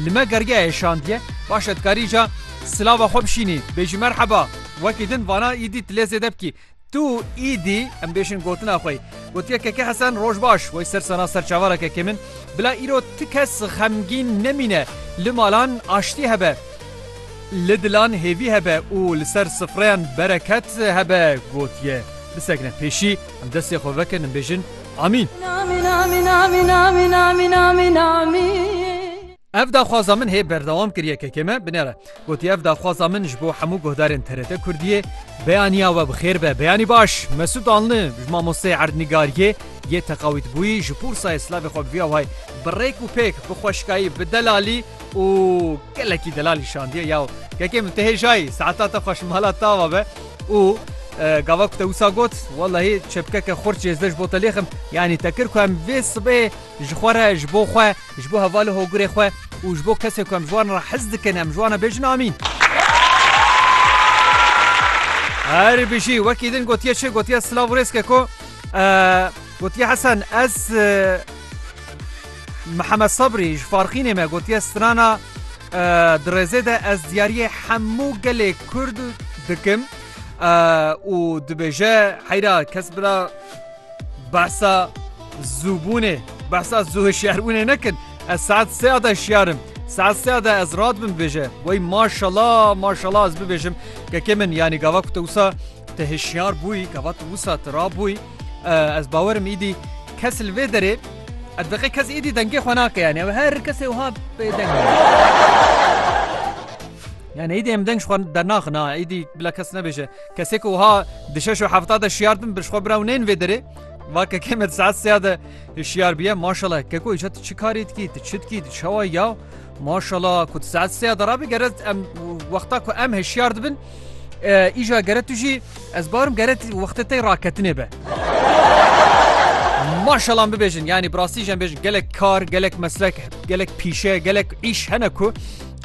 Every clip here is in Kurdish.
Li me gergeyê şandiye baş e dikarî îca silava xwe bişînî, bêjî merheba, wekî din vana îdî tu lê zêde bikî. Tu îdî em bêjin gotina xwe yî. Gotiye Keke Hesen roj baş, wey ser sena ser çavara kekê min. Bila îro ti kes xemgîn nemîne, li malan aştî hebe, li dilan hêvî hebe û li ser sifreyan bereket hebe. Gotiye Bisekine pêşî, em destê xwe vekin em bêjin, Amîn. Ev daxwaza min hê berdewam kiriye kekê me binêre. Gotiye ev daxwaza min ji bo hemû guhdarên TRT Kurdiyê. Beyaniya we bi xêr be. Beyanî baş. Mesûd Anli ji mamosteyê erdnîgariyê yê teqawîtbûyî ji pûrsayê silavê xwe bi vî awayî bi rêk û pêk, bi xweşikayî, bi delalî û gelekî delalî şandiye. Yaw kekê min tu hêjayî, saeta te xweş mala tawa be. Û gava ku te wisa got, wellahî çepkeke xurtçê ez dê ji bo te lêxim. Yanî te kir ku em vê sibê ji xwe re, ji bo xwe, ji bo hevalê hogurê xwe û ji bo kesên ku em ji wan re hez dikin em ji wan re bêjin amîn. Herî bijî, wekî din gotiye çi? Gotiye silav û rêzke ku gotiye Hesen ez Mihemed Sabrî ji Farxînê me gotiye strana di rêzê de ez diyariyê hemû gelê Kurd dikim û dibêje heyra kes bila behsa zûbûnê behsa zû hişyarbûnê nekin ez saet seya de şiyarim saet seya de ez rat bin bêje wey maşala maşala ez bibêjim kekê min yanî gava ku te wisa te hişyar bûyî gava tu wisa tu rabûyî ez bawerim îdî kes li vê derê Ev deqê kes êdî dengê xwe nake yanî ew her kesê wiha bê deng e. Yani êdî em deng ji xwe dernaxin ha êdî bila kes nebêje kesê ku wiha di şeş û hefta de şiyar bin bi ji xwe bira û neyên vê derê va kekê me di saet seya de şiyar biye maşallah keko îca tu çi karê dikî tu çi dikî tu çawa ya Maşala ku tu saet seya derabî gere em wexta ku em hişyar dibin îja gere tu jî ez barim gere wextê te raketinê be. Maşalan bibêjin yanî birastî jî em bêjin gelek kar gelek meslek gelek pîşe gelek îş hene ku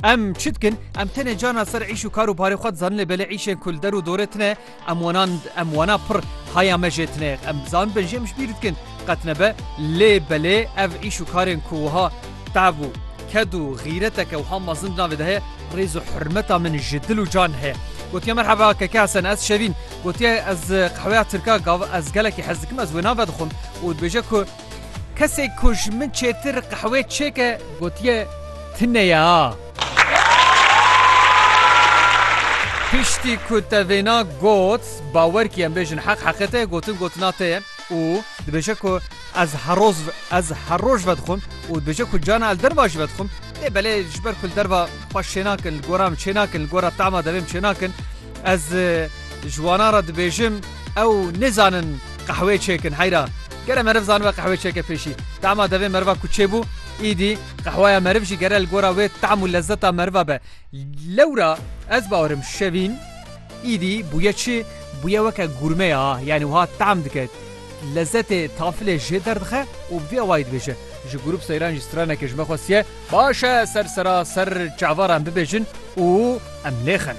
em çi dikin em tenê cana ser îş û kar û parê xwe dizanin lê belê îşên kul der û dorê tine Em wana em wana pir haya me jê tine em bizan bin jê em ji bîr dikin qet nebe lê belê ev îş û karên ku wiha tav û ked û xîreteke wiha mezin di navê de heye rêz û hurmeta min ji dil û can heye. Gotiye merheba keke Hesen ez Şevîn gotiye ez qehweya tirka gav ez gelekî hez dikim ez wê nave dixwim û dibêje ku kesê ku ji min çêtir qehwê çêke gotiye ti neye a. Piştî ku te vêna got, bawer kî em bêjin heq heqê te ye, gotin gotina te ye û dibêje ku ez heroz ez her roj vedixwim û dibêje ku carna li derva jî vedixwim. Lê belê ji ber ku li derva xwe şênakin, li gora min çênakin, li gora tahma devê min çênakin, ez ji wanan re dibêjim ew nêzanin qehweyê çêkin. Heyra gere meriv zanibe qehweyê çêke pêşî tahma devê meriva ku çêbû, îdî. Qehweya meriv jî gere li gora wê tam û lezzeta meriva be. Lewra ez bawerim şevîn îdî bûye çi? Bûye weke gurme ya, yanî wiha tam dike. Lezzetê tafilê jê derdixe û bi vî awayî dibêje. Ji grûp seyran jî straneke ji me xwestiye, Baş e ser sera ser çavaran bibêjin û em lêxin.